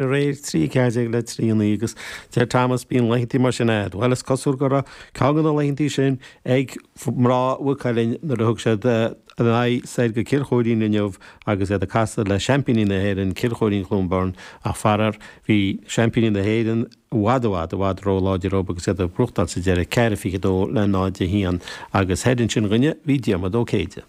de réir trí 14 le trí naoi agus deir Tomás bíonn laethanta mar sin agat. Bhuel is cosúil go raibh ceann de na laethanta sin ag mná Mhaigh Cuilinn nuair a thug siad a n-aghaidh soir go Cill Choirín inniu agus iad ag casadh le seaimpíní na hÉireann, Cill Choirín-Cluain Bheirn ach faraor bhí seaimpíní na hÉireann i bhfad, i bhfad, i bhfad róláidir dóibh agus iad ag buachtáil sa deireadh, ceithre 22 le 0 1 agus thoir ansin dhúinne bhí Diarmaid Ó Céide.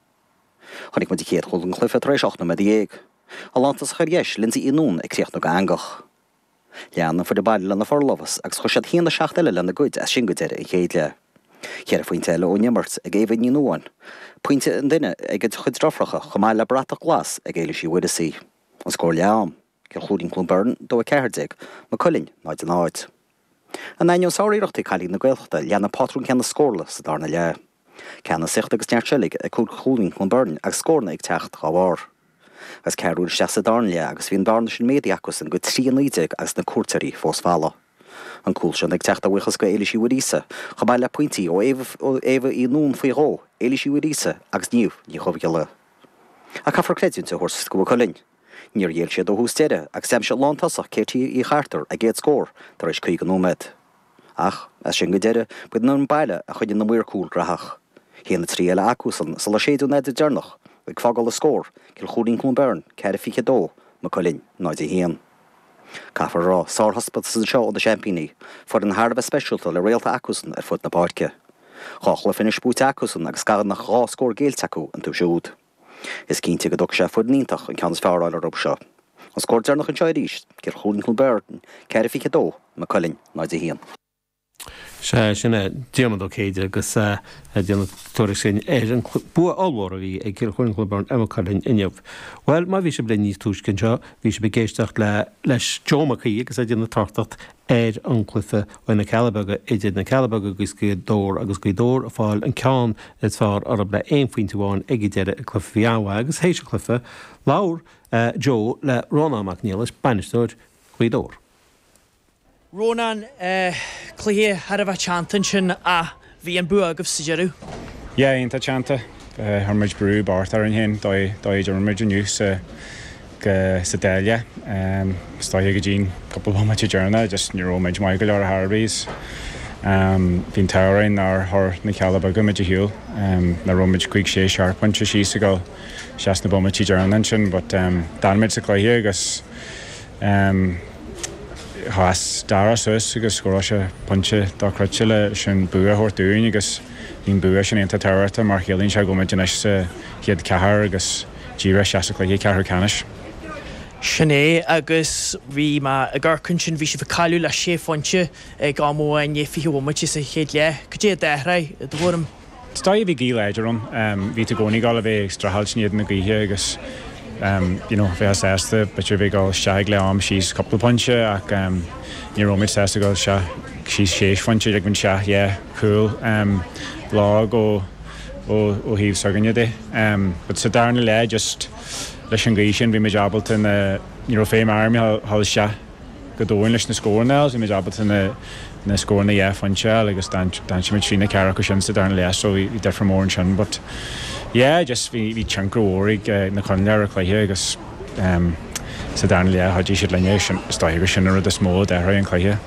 Chonaic muid an chéad chúl den chluiche tar éis ocht nóiméad déag ón lántosach ar dheis, Lynsey Uí Nuáin ag críochnú go eangach. Lean an foireann baile lena forlámhas agus chuir siad a haon a seacht eile lena gcuid as sin go deireadh an chéad leath. Ceithre phointe eile ón imirt ag Éabha Ní Nuáin, pointe an duine ag a cuid deirfiúracha chomh maith le bratach glas ag Éilís Uí Mhuireasaigh. An scór leath-am. Cill Choirín-Cluain Bheirn, dó 14, Maigh Cuilinn, 0 0. In ainneoin sáriarrachtaí cailíní na Gaeltachta lean an pátrún céanna scórála sa darna leath. Ceannasaíocht agus neart seilbhe ag Cill Choirín-Cluain Bheirn agus scóranna ag teacht dhá bharr. Agus ceathrú uair isteach sa darna leath agus bhí an bhearna sin méadaithe acusan go 3 19 agus na cuairteoirí fós folamh. An cúl sin ag teacht a bhuíochas do Éilís Uí Mhuiríosa, chomh maith le pointí ó Éabha Uí Nuáin faoi dhó, Éilís Uí Mhuiríosa agus Niamh Ní Dhuibhghiolla. Ach caithfear creidiúint a thabhairt do Mhaigh Cuilinn. Níor ghéill siad ó thús deireadh agus d'aimsigh lántosach Katie Uí Chartúir a gcéad scór tar éis 50 nóiméad. Ach, as sin go deireadh, ba iad an baile a choinnigh na maoir cúl graitheach. A haon a 3 eile acusan sular séideadh an fheadóg deireanach, ag fágáil an scór, Cill Choirín-Cluain Bheirn, 4 22, Maigh Cuilinn, 0 1. Caithfear a rá, sárthaispeántas anseo ó na seaimpíní, foireann thar a bheith speisialta le réalta acusan ar fud na páirce. Dhá chluiche anois buaite acusan agus gan ach dhá scór géillte acu iontu siúd. Is cinnte go dtógfaidh sé foireann iontach an ceann is fearr a fháil orthu seo. An scór deireanach anseo arís, Cill Choirín-Cluain Bheirn 4 22 Maigh Cuilinn 0 1. Sea, sin é Diarmaid Ó Céide agus é ag déanamh tuairisc ansin ar an bua ollmhór a bhí ag Cill Choirín-Cluain Bheirn ar Maigh Cuilinn inniu. Bhuel, má bhí sibh linn níos túisce anseo, bhí sibh ag éisteacht le leis Joe Mac Aoidh agus é ag déanamh tráchtaireacht ar an gcluife le na Cealla Beaga idir na Cealla Beaga agus Gaoth Dobhair agus Gaoth Dobhair ag fáil an ceann is fearr orthu le haon phointe amháin ag an deireadh i gcluife a bhí an-mhaith agus théis an chluife labhair Joe le Rónán Mac Niallais, bainisteoir Ghaoth Dobhair. Rónán, Cluiche thar a bheith teannta ansin a. Bhí an bua agaibh sa deireadh. Yeah, iontach teannta. Chuir muid brú, beart orainn féin dóigh a d'imir muid inniu sa Dáil é. Istoíche go dtí'n cúpla bomaite deireanach just ní rabh muid maith go leor ar chor ar bith is bhí an t-ádh orainn nár chuir na Cealla Beaga muid ar shiúl, nach rabh muid cúig sé seacht pointe síos ag dul isteach sna bomaití deireanach ansin but d'fhan muid sa cluiche agus Em. chas Dara suas agus scóráil sé pointe dochreidte leis an bua a thabhairt dúinn agus bhí an bua sin iontach tábhachtach mar chiallaíonn sé go bhfuilmid anois sa chéad cheathair agus díreach isteach sa cluiche ceathrú ceannais. Sin é agus bhí mé ag amharc ansin, bhí sibh ag cailleadh le sé phointe ag am amháin, i ndiaidh fiche bomaite sa chéad leath. Cad é a d'athraigh i do thuairim? Is dóiche bhí gaoth láidir ann. Bhí tú i gcónaí ag goil a bheith ag streachailt in éadan na gaoithe agus you know bheith sásta b'fhéidir a bheith ag goil isteach ag leath am síos cúpla pointe ach ní raibh muid sásta goil isteach síos sé phointe ag ligean isteach an cúl lag ó ó ó thaobh s'againne de but sa darna leath just leis an gaoth sin bhí muid ábalta na ní raibh feidhm orainn a ghoil isteach. go domhain leis na scóranna agus bhí muid ábalta na scóranna dhá phointe a fháil agus d'aimsigh muid trí nó ceathair acu sin sa darna leath so bhí difear mór ansin but yeah just bhí tionchar mhór ag na coinníollacha ar an chluiche agus sa darna leath chuaigh siad linne agus is dóiche gur sin an rud is mó a d'athraigh an cluiche.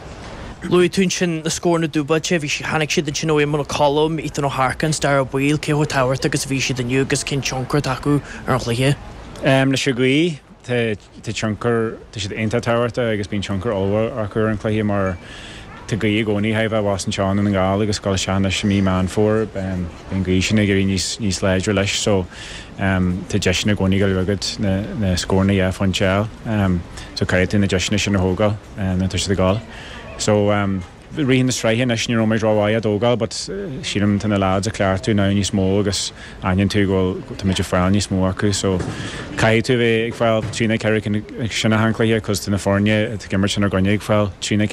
Luaigh tú ansin na scóranna dúbailte, bhí siad, tháinig siad ansin ó Éamonn Ó Colm, Ethan Harkin, Dara Ó Baoill, cé chomh tábhachtach agus a bhí siad inniu agus cén tionchar atá acu ar an chluiche? Leis an gcaoi tá. Tá tionchar, tá siad iontach tábhachtach agus bíonn tionchar ollmhór acu ar an chluiche mar tá gaoth i gcónaí ag goil a bheith abhus anseo i nDún na nGall agus ag goil isteach anois i mí Meán Fómhair beidh an gaoth sin ag éirí níos, níos láidre leis so tá deiseanna i gcónaí ag goil a bheith agat na, na scóranna dhá phointe a fháil so caithfidh tú na deiseanna sin a thógáil nuair atá siad ag goil so. rith na sraithe anois ní raibh muid ró mhaith á dtógáil but sílim tá na leaids a' cleachtadh now níos mó agus aithníonn tú go bhfuil, táimid a' fáil níos mó acu so caithfidh tú a bheith ag fáil trí nó ceithre cinn acu sin achan cluiche 'cause tá na foirne atá ag imirt inár gcoinne ag fáil trí nó ceithre.